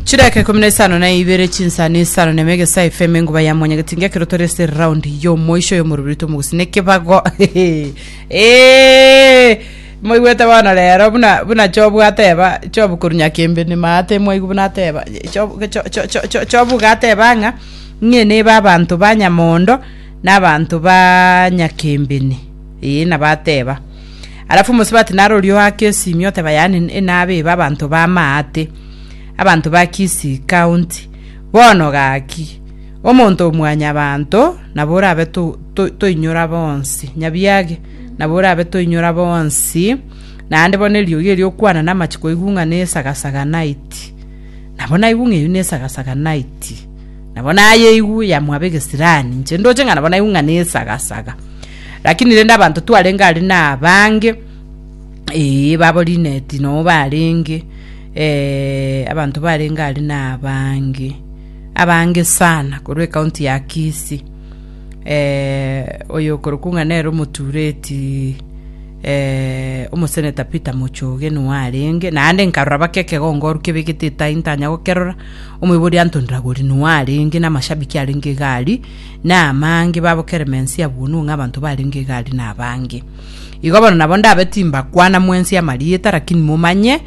Chidakika ikomi na isano na ibere chinsani isano na ime egesaa efm enguba ya mwanyagetinga ekero tore ase round y'omoisho y'omorobiri tomogusina ekebago Eh, moigwete bono rero buna buna chobu ateba chobu koru nyakembe nimaate mwaigu buna ateba chobu cho- cho- cho- cho- chobu iga ateba ng'a ng'e neba abanto ba nyamondo na abanto ba nyakembeni Ee, na bateba. Arafu omosubati narorie oake esimi, oteba, Yaani enabe iba abanto ba Maate, abanto ba Kisii County. Bono gaki, omonto o mwanyabanto, nabo orabe to, to, toinyora bonsi, nyabiage, nabo orabe toinyora bonsi, naende bono eriogi erio okwana namache koigung'a na esagasaga night. Nabo naigung'a eyio na esagasaga night. Nabo naye igu yamwaba egesirani, inche ndoche ng'a nabo naigwe ng'a nesagasaga. Lakini rende abanto twarenge aria na abange, ee, babo Linet noo barenge, eh, abanto barenge aria na abange, abange sana korwa ekaunti ya Kisii. Eh, oyo okorokwa ng'a nere omotureti eh, omoseneta Peter Mochoge noo arenge, naende nkarora baka ekegongoru kebegete etai ntanya gokerora, Omoibori antondora gori Noa arenge namashabiki arenge egari, na amange babo Keremens abunwe ng'a abanto barenge egari nabange. Igo bono nabo ndabe timbakwana mwensi amarieta, lakini momanye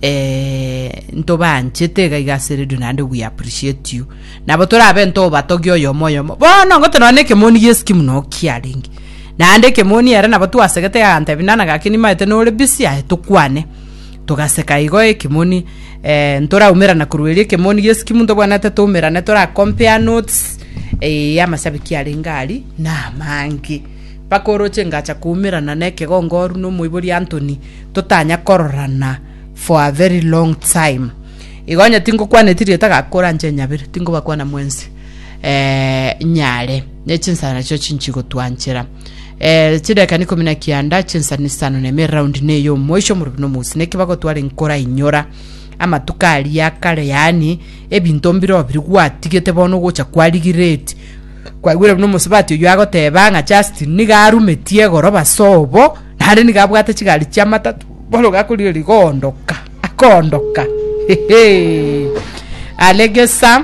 eh, ntobaanchete iga iga ase radio naende we appreciate you. Nabo torabe ntobatogia oyomo oyomo. Bono ngote nonya ekemoni gi'esiki muna okiarenge. Naende ekemoni ere nabo twasegete agantebi nana gaki nimaete nore busy aye tokwane. Togaseka igo ekimoni eh, ntoraumerana korwa erio ekemoni gesi kimunto bwanete toumerane tora compare notes eh, amashabiki arenge ari na amange mpaka oroche ngacha koumerana na ekegongoru na omoibori Anthony totanya kororana for a very long time igo onye tingokwaneti rieta gakora nche nyabere tingobakwana mwensi eh, nyare ne chinsana chio chinchigotwanchera Eh, chidakikani ikomi na kianda chinsani isano na ime eraundi ne eyomoisho omorobio na omosi neki bagotwara enkora inyora amatuko aria ya kare yaani ebinto mbiro biri gwatigete bono gocha kwarigireti kwaigwire buna omosubati oyo agoteba ng'a Justin niga arumetie egoroba sobo naende niga abwate chigari chia matatu bono gakorigereria goondoka akoondoka hehe alegesa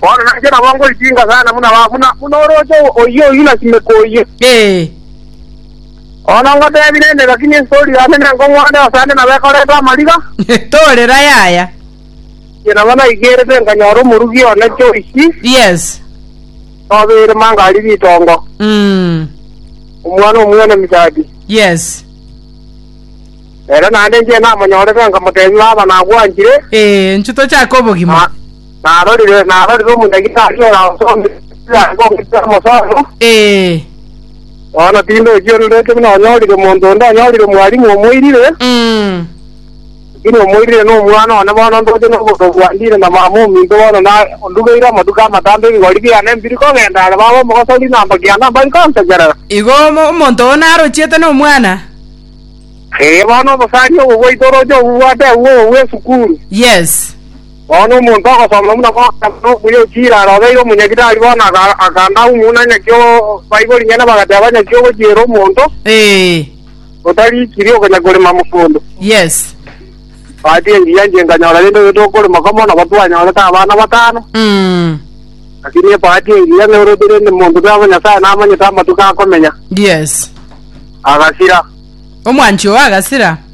Bono nainche nabo ngoitinga sana buna ba- buna buna orooche oyio oyio na simeka oyio. Ee. Bono ngotebi rende, gaki nestori yane nengo ng'wane ase ande nabo ekorete amariga, Torera yaya. inche nabo naigerete nkanyora omorugi one Joyce, Yes. nobeire mangari ritongo, Mm. omwana omwene Mishadi. Yes. Ere naende inche namonyorete nkamotebi baba nagwanchire, Ee, nchu tochake obogima. Ah. Narorire, narorire omodagitari oransomete ekiagera ng'omete amosoero, Ee. bono tindochiororete buna onyorire omonto onde onyorire omwalimu omoirire, Mm. lakini omoirire nomwana one bono ndoche noboronge bwa ndire na mama ominto bono na ondugeire amatuko amatambe ebigori biane mbiri kogenda are baba omogosori na amba kiana mbari konsekerera. Igo omo- omonto oo narochiete nomwana? Ee, bono obosari obo bwaito oroche obubwate agwo obwe esukuru. Yes. Bono omonto ogosomba buna gokana nokuya ochia ira arobeire omonyaki tari bono akanda aumuna nyaki baibori nyene bagateba nyaki ogochiera omonto otarikiri okonya korema mogondo. Yes. Bahati engiya inche nkanyora rende oyo tokorema komo nabo twanyorete abana batano. Lakini ebahati engiya ng'a oroche rende monto tari bo Nyasaye namanyete amatuko akomenya. Yes. Agasira. Omwanchi oo agasira.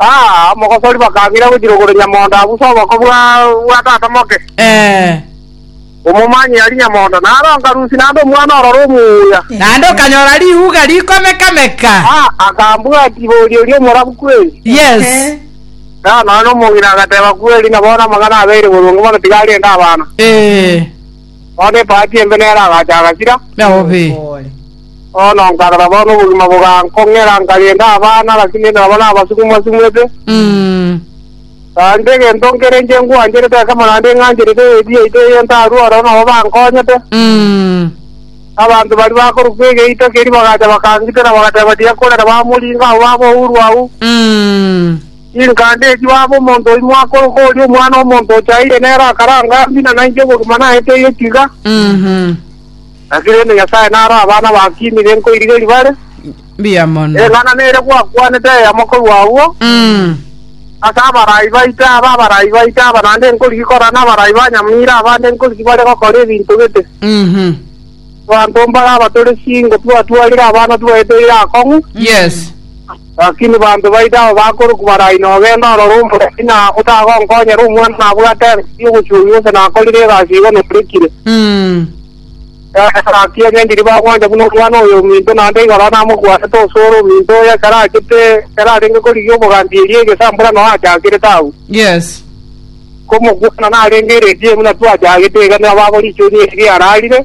Aa, omogosori bakang'ira gochira ogoro nyamondo abusa oboko bwa bwa tata moke. Eh, Omomanyi aria nyamondo nare onkarusia naende omwana ororo omuya. naende okanyora riuga rikomeka-meka. Aa, akambwatia boria oria omorabu kweri. Yes. Ehe. Aa, nonya omong'ina agateba, Kweri, na bono amang'ana abeire boronge mono tiga arende abana. Eh, Bono epaati embe nere agacha agasira. Nao be. Bono nkarora, bono obogima bogankong'era, nkarenda abana, lakini rende nabo nabasuku mbasumete. Tari negento nkere inche ngwancherete ekemo naende ng'ancherete eyebia yaito eye ntarue ororo nabo bankonyete. Abanto baria bakorokwa Egeito keria bagacha bakangitera bagateba, Tiakorera bamoringo abwo ab'ourwa agwo. Chinkande echi baaba omonto oimo akorokwa oria Omwana-o-monto ochaeire nere akare angambie na nainche ogokima naete egetiga. Naki rende Nyasae naro abana bakimire nkoirigeria bare. Mbuya mono. Eng'ana nere gwakwanete eyemo korwa agwo, Ase abarai baito aba, abarai baito aba, naende nkorigia korana nabarai ba nyamira abande nkorigia bare gokora ebinto gete. Abanto mbare abatore chingo twaatwarire abana twaeteire akong'u. Yes. Lakini banto baito aba bakorokwa barai nogenda ororo omoremi, na otagonkonyera omwana nabwate engaki y'ogochungi gose nakorire egasi igo norekire. Eeh, gaki onye ndiri bagwancha buna omwana oyo ominto, naende igoro namokwanete ase ore ominto oyo ekero achete, ekero arenge korigia obogambi eria egesambura noo achakerete agwo. Yes. Komokwana narenge eredio ime natwe achagete iga nigo babo richoria erio riararire.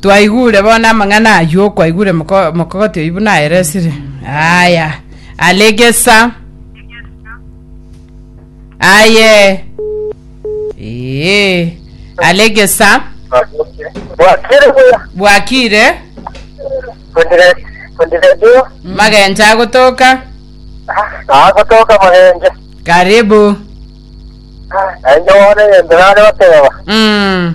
Twaigure bono amang'ana ayio okwaigure mokogoti oyio buna aeresire. Aya are gesa aye ee are gesa Bwakire buya. bwakire Kundire- Kundiredio. magencha agotoka Agotoka magenje. karibu Enje wone yendera are oteba. mm.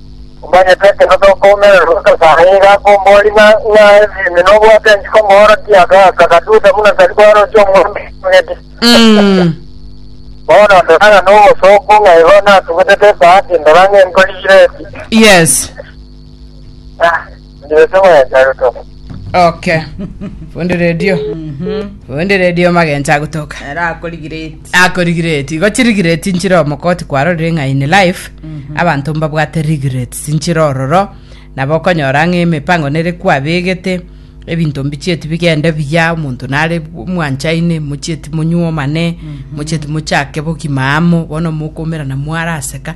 Omanyete ekero tokoumererwa Nyasae iga akombori ng'a ng'ae Filipi nobwate enchiko omoorokia agaaka gatusa buna tari kwaroche omwami omogeti. Mm. Bono ndora ng'a nobosooku ng'a igo natugutete esaati ndora ng'enkorigireti. Yes. Ndetse mwenja gutoka. Okay. Fundi radio. Fundi radio magencha agotoka. Ere akorigireti. akorigireti igo chirigireti nchire omokoti kwarorire ng'a in life abanto mbabwate regrets nchire ororo nabo okonyora ng'a emipango nere kwabegete ebinto mbichieti bigende buya omonto nare mwanchaine mochieti monyuomane mochieti mochake bogima amo bono mokomerana mwaraseka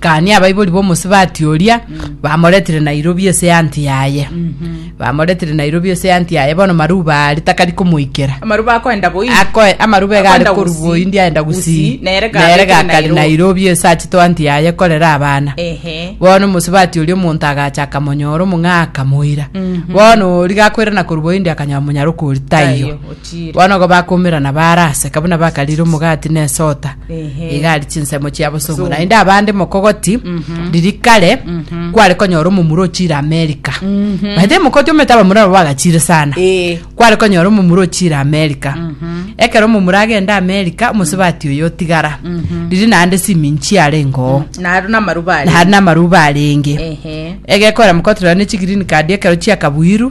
Gania abaibori b'omosibati oria bamoretire Nairobi ase eanti yaye bamoretire Nairobi ase eanti yaye bono Maruba are takari komoikera amaruba akoenda boyi akoe amaruba iga are Akoenda korwa Gusii. boindi aenda Gusii. gusii Nere gabekire nere gakari Nairobi. nairobi ase achete anti yaye korera abana ehe bono omosibati oria omonto agacha akamonyora omong'aa akamoira bono oria gakoirana korwa boindi akanyora monyara okoritaiyo Taiyo. Bono igo bakoumerana baaraseka buna bakariire omogati na esota, Ehe. iga aria chinsemo chia bosongo. Bosongo. Naende abande mokogoti, riria kare kware konyora omomura ochire America. By the way, mokoti omanyete abamura nabo bagachire sana. Eh. Kware konyora omomura ochire America. Ekero omomura agende America, omosubati oyo otigara. Riria naende simiin chiarenge oo. Naro namaruba aria. Naende namaruba arenge. Ehe. Egekora mokoti rero ne chigreen card ekero chiakabuirwe,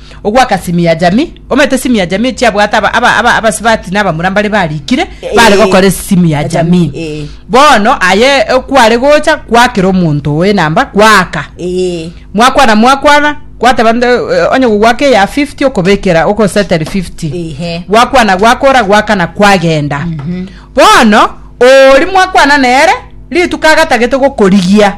Ogwaka simi ya jamii. Omanyete simi ya jamii chiabwate aba- aba- aba- abasibati na abamura mbare barikire bare Eh. gokora esimu ya jamii Jamii, eh. bono aye eh, kware gocha gwakera omonto oyo enamba gwaka Ee. mwakwana mwakwana gwateba nde eh, onye gogwaka eya 50 okobekera okoseteri 50 Ehe. gwakwana gwakora gwakana kwagenda bono ori mwakwana nere rituko agatagete gokorigia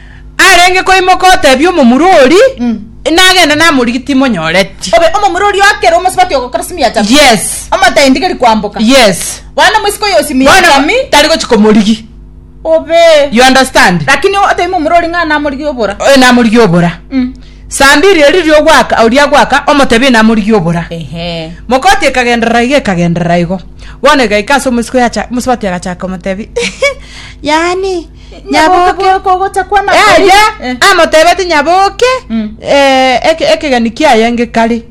Arenge koimoka otebia omomura oria, nagenda namorigia timonyoreti. Obe omomura oria akere omosubati ogokora simiacha. Yes. Omotaindi geri kwamboka. Yes. Bono omosike oyo osimiacha Bono mi. tari gochi komorigi. Obe. You understand? Lakini otebia omomura oria ng'a namorigia obora. Eh, namorigia obora. Mm. Saa mbiri eri riria ogwaka, oria agwaka, omotebia namorigia obora. Ehe. Mokoti ekagenderera iga ekagenderera igo. Bono egaika ase omosike oyo acha, omosubati agachaka komotebia, yaani, Nyaboke nyaboke bwoko ogochakwa na eye Eh. amotebetie nyaboke Mm. eh, eke- ekegeni kiaye ngekari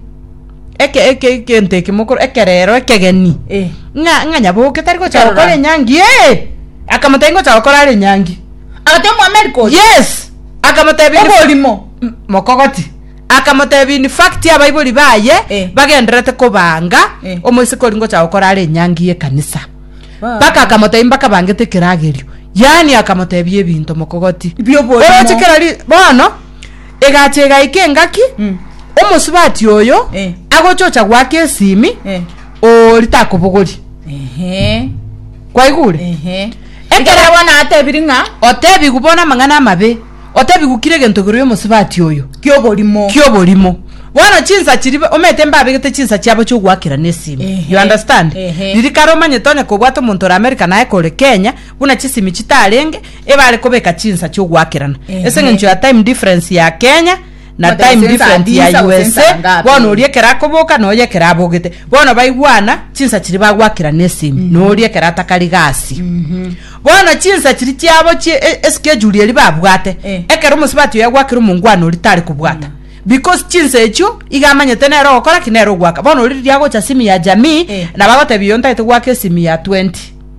eke eke egento eke mokoro ekerero ekegeni Eh. ng'a ng'a nyaboke tari gocha Ekerora. gokora enyangi ee akamotebia ngocha gokora are enyangi Agate omwameri kocha. yes akamotebia ni- Oborimo. M- mokogoti akamotebia in fact abaibori baye Eh. bagenderete kobanga Eh. omoiseke ori ngocha gokora are enyangi y'ekanisa Mpaka akamotebia mbakabangete ekeragerio, yaani akamotebia ebinto mokogoti. Bi'oborimo. Oroche kera ri- bono egacha egaika engaki Mm. omosubati oyo Eh. agochocha gwaka esimi Eh. ori takobogori Ehe. kwaigure Ehe. Ekero- Ekero bono atebiri ng'a otebigwe bono amang'ana amabe Otabigukire egento igoro y'omosubati oyo. Ki'oborimo. Ki'oborimo. Bono chinsa chiribe omanyete mbabegete chinsa chiabo chi'ogoakera nesimi. You understand? Riria kare omanyete onye kobwate omonto ore America naye kore Kenya, buna chisimi chitarenge, ebare kobeka chinsa chi'ogoakerana. Ase eng'encho ya time difference ya Kenya, na Omote time gose ensa different ya ndinsa gose ensa USA ngape. bono oria ekero akoboka noyo ekero abogete bono baigwana chinsa chiria bagwakera na esimi noria ekero atakari gasi bono chinsa chiri chiabo chi e- eschedule eri babwate Eh. ekero omosubati oyo agwakire omongwana ori tari kobwata because chinsa echio iga amanyete nere ogokora ki nere ogwaka bono ori riria agocha simi ya jamii Eh. nabo agotebia oyo ntagete gwaka esimi ya 20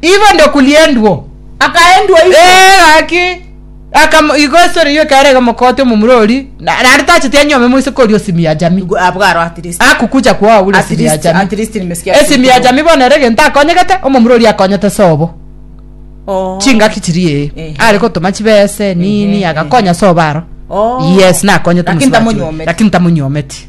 Igo ndokuliendwo, akaendwa igo. Ee, gaki. Aka igo esore yoka ere gomokote omomurori, na naende tacheti anyome moise kori osimi ya jami. Igo abwo aro at least. Akukucha kwa abure At esimi ya least, jami. at least nimesikia Esimi ya jami bono ere egento akonyegete, omomurori akonyete sobo. Oh. Chingaki chiri ee. Ehe. Are gotoma chibesa Ehe, nini ehe. agakonya sobo aro. Oh. Yes, nakonyete Lakini omosi wa chibo. tamonyometi. Lakini tamonyometi.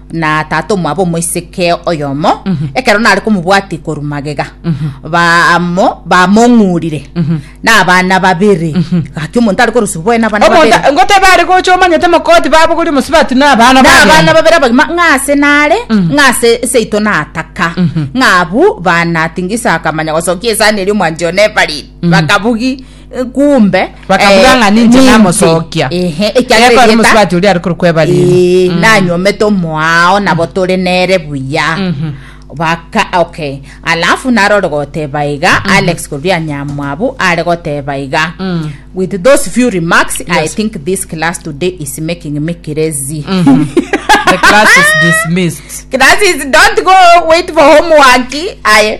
na tata omwabo omoiseke oyomo ekero nare komobwatia ikoru magega bamo bamong'urire na abana babere gaki omonto are korosia oboe na abana babere omonto ngotebe are gocha omanyete mokoti babogoria omosibati na abana na abana bagenda babere abagima ng'ase nare ng'ase seito nataka ng'a abwo banatinga isiko akamanya gosokia esani eria omwancha one Evarine bakabugia kumbe Bakabuga eh, ng'a ninche nimpe. namosokia. Ehe, Ekero ekiagera erieta- omusubati oria arikore kweba riri. Eh, nanyomete omoao nabo tore nere buya baka okay alafu narore goteba iga alex koria nyamwabu are goteba iga with those few remarks yes. i Yes. think this class today is making me crazy The class is dismissed. classes don't go wait for homework aye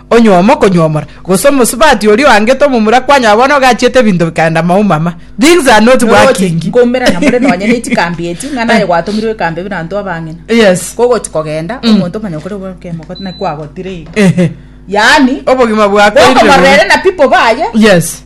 onyomo konyomora, gose omosubati oria oangete omomura kwanyora bono ogachiete ebinto bikaenda maumama. Things are not working. nkomera na more nonye ne chikambi echi ng'a naye gwatomirwe ekambi buna anto abang'ina Yes. kogochi kogenda mm. omonto omanya kore bwakemoko na kwagotire iga Ehe. yaani Obogima bwako gokomorera ere na people baye Yes.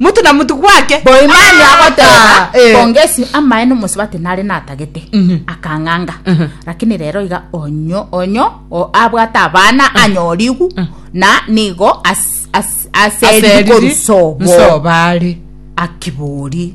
Mutu na mutu gwake. Boimani agoteeba, Bongesi, amaye nomosubati nare natagete, akang'anga, rakini rero iga onyo onyo abwate abana anyorigu, na nigo aseriri korwa sobo are. Akibori.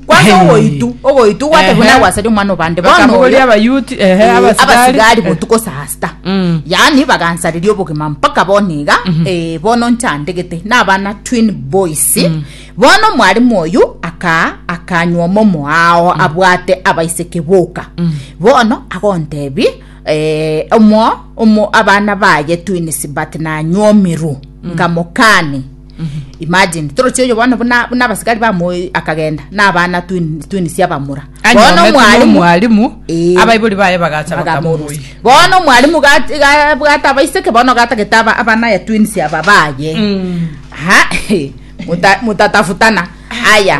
Kwanza Hey. ogoitu ogoitu gwate Ehe. buna gwasaria omwana obande bono Bakamogoria oyo, abayuti, ehe, eh, abasigari. abasigari botuko sasta Mm. yaani bagansareria obogima mpaka bono iga eh, bono nchandegete nabana twin boys bono omwarimu oyu aka akanywa omomo ao abwate abaiseke boka bono agontebi eh, omo omo abana baye twins but nanywa omiru nkamokani imagine toroche oyo bono buna buna abasigari bamoe akagenda na abana twin twin sia bamura bono anyomete mwalimu nomwalimu Eh. abaibori baye bagacha bakamorusia bakamorusia bono mwalimu ga- ga- bwata abaiseke bono gatagete aba- abana ya twins aba baye Mm. Ha, muta- mutatafutana aya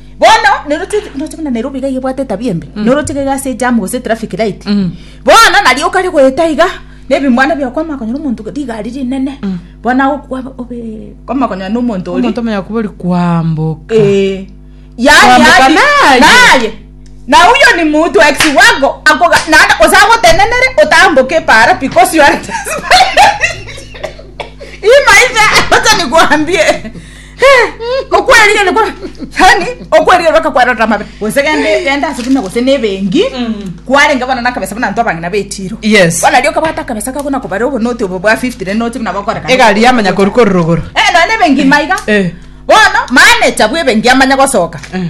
bono neroche noche buna nairobi iga yebwate etabia embe noroche iga ase jam gose traffic light bono nario okare goeta iga nebimwana biao kwama konyora omonto rigari rinene bono agokwa obe kwama konyora na omonto oria omonto omanya kubori kwamboka Eh, yaani Kwambuka hadi- naye. naye na huyo ni mtu ex wako akoga naanda osagotenenere otamboke para because you are hii maisha wacha nikuambie okwerigeria kora yani okwerigeria bakakwarera amabe gose gende gende ase buna gose nebengi kwarenge bono nakabesa buna anto abang'ina betiro Yes. bono rio kabata akabesa kako nakobare obo noti obo bwa 50 rende noti buna bakoreka egari yamanya koru korurogoro Eh, nonye ebengi maiga Eh. bono manager bwa ebengi amanya gosoka Eh.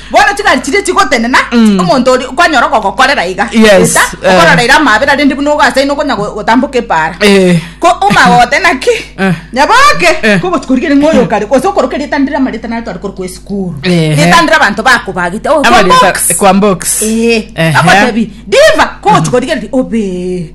Bono ching'ari chiria chigotenena mm. omonto ori kwanyora ogogokorera iga yes, eta uh, eh. okorora ira amabera rende buna ogasaina okonya gotamboka epara eh. ko omagote naki eh. nyaboke eh. ko gotikorigere ng'oyo kare gose okoroka ritandire amarita nare twari kori kwa esukuru eh. ritandire abanto bakobagite oh, kwa box kwa box eh. eh. agotebi diva ko gotikorigere obe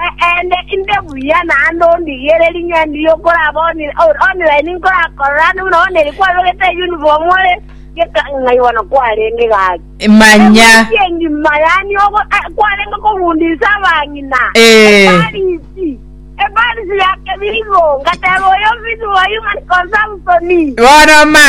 Eende, inde buya naende ondigiere ring'endi ri'okoraba online nkorakorerane buna one rikwarogete eyunifomu ore geka ng'a igo nakw'arenge gaki. Manya. Ebusi engima yani ogo eh, kwarenge kobundisa abang'ina. Eh. Eparisi. Eparisi ya kebirigo. Ngateba oyo ofisi wa Human Consumption. Bono ma.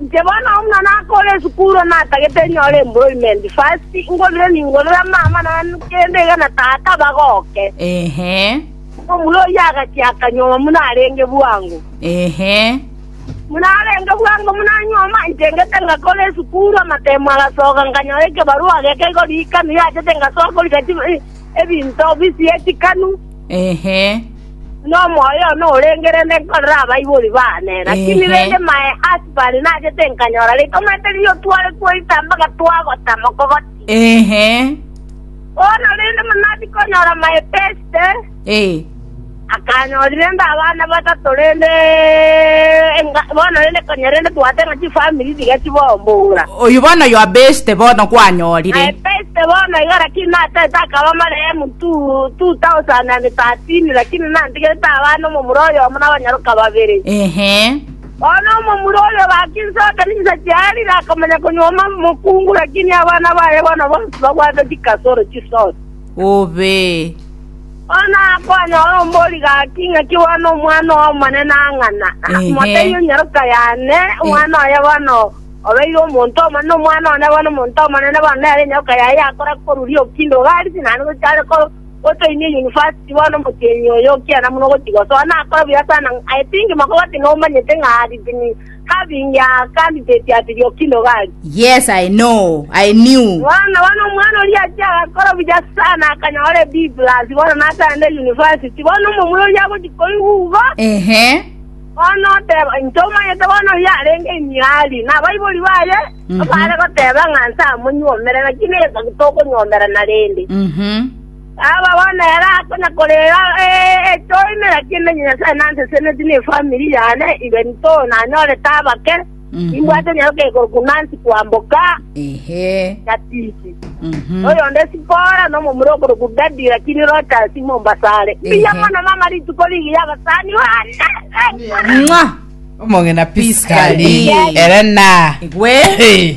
Inche bono omwana akore esukuru natagete nyore employment first, ngorire ningorere amang'ana ane kende iga na tata bagoke. Ehe. Omura oyio agachia akanyuoma buna arenge bwango. Ehe. Buna arenge bwango buna anyuoma, inche ngete ngakora esukuru, amatemo agasoka, nkanyora ekebarua geke igorikana yachete ngasoa korika chibesa. ebinto bisiechikanu, Ehe. buna omoyo one orengerende nkorere abaibori baane, lakini Ehe. rende mae ase bare nache tinkanyora ritomete riria tware twaita mpaka twagota mokogoti. Ehe. Bono rende buna tikonyora mae Peste, Ee. Akanyorire inde abana batato, rende bono rende konya rende tobwate ng'a chifamiri tiga chibombora. Oyio bono oyo abeste bono kwanyorire. Abeste bono iga lakini natete akaba amarehemu 2013 lakini nantigerete abana omomura oyomo na abanyaroka babere. Ehe. Bono omomura oyo bakinsoka ninsa chiarire akamanya konyuoma mokungu lakini abana baye bono bonsi babwate chikasoro chisose. Obe. Bono akonyora ombori gaki, Ing'aki bono Omwana omonene ang'ana, akamotebia, Onyaroka yane, omwana oye bono obeire omonto omonene, omwana one bono omonto omonene, bono nere enyaroka yaye yakora koruria okinde iga arisi, naende goika are gotoinia eyunifasiti. Bono omotienyi oyo okiena buna ogochia gosoa, nakora buya sana, I think makobati nomanyete ng'a arisi Having a candidate at Lyokino Valley. Yes, I know. I knew. Bono bono omwana oria achia agakora buya sana akanyora a B plus bono natagende university bono omomura oria agochi koigwa ugo Ehe. bono oteba inche omanyete bono oria arenge emiari na abaibori baye Mhm. bare goteba ng'a nse amonyuomere naki nesa tokonyomerana rende Mhm. Aba bono ere akonya korera, Ee, toimera kimenye Nyasae nanseseneti nefamiri yane, iga intwo nanyorete abake, nimbwate nyaroke korokwa Nancy kwamboka Ehe. Gatisi. Mhm. Oyonde Sipora nomomura okorokwa Gadi lakini Rochas Mombasa are. Mbuya Ehe. mono mama rituko rigi yabasani bane. Mwa! Omong'ina Piscali. Piscali. Ere na. Gwe. Hey.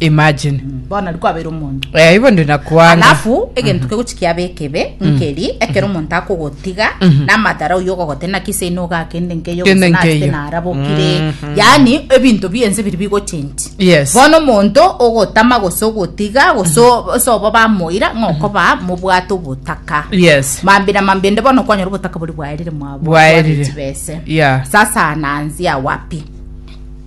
imagine bono riku abeire omonto eh ibo ndi nakwanga alafu egento kegochi kiabe ekebe nkeri ekero omonto akogotiga namadara oyo ogogote naki ase ino ogakende nkeyo Kende gose nachete nkeyo. narabokire yani ebinto biense biri bigochenji Yes. bono omonto ogotama gose ogotiga gose o- ase obo bamoira ng'okoba mobwate obotaka yes mambira mambende bono kwanyora obotaka bori bwaerire mwabo Bwaerire. chibese Yeah. sasa nanzia wapi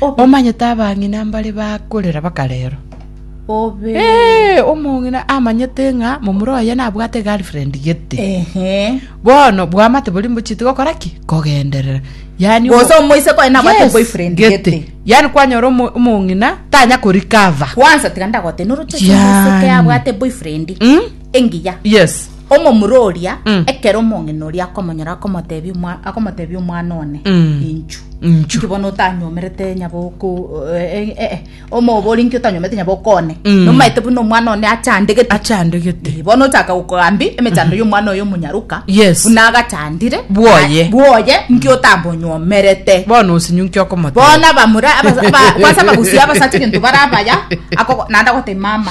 Omanyete abang'ina mbare bakorera bakarerwa. Obe. Hey, omong'ina amanyete ng'a momura oye nabwate girlfriend gete. Ehe. Bono bwamate bori mbochite gokora ki? Kogenderera. Yani Gose omoise koye nabwate boyfriend gete. Yani kwanyora omo- omong'ina tanya korikava. Kwanza tiga ndagote noroche Yaani. omoise kea abwate boyfriend. Mm? Engiya. Yes. Omomura oria, Mm. ekero omong'ina oria akomonyora akomotebia omwa- akomotebia omwana one, Mm. Inchu. Inchu. Inki bono otanyomerete nyaboko eh, eh, eh, omobori inki otanyomerete nyaboko one. Mm. Nomaete buna omwana one achandegete. Achandegete. bono ochaka gokogambi emechando y'omwana oyo omonyaruka Yes. buna agachandire Bwoye. Na- bwoye nki otambonyomerete Bono osinyu nki okomotebia. bona bamura abasa- aba- kwasa bagusia abasacha egento barabaya ako- naende agote mama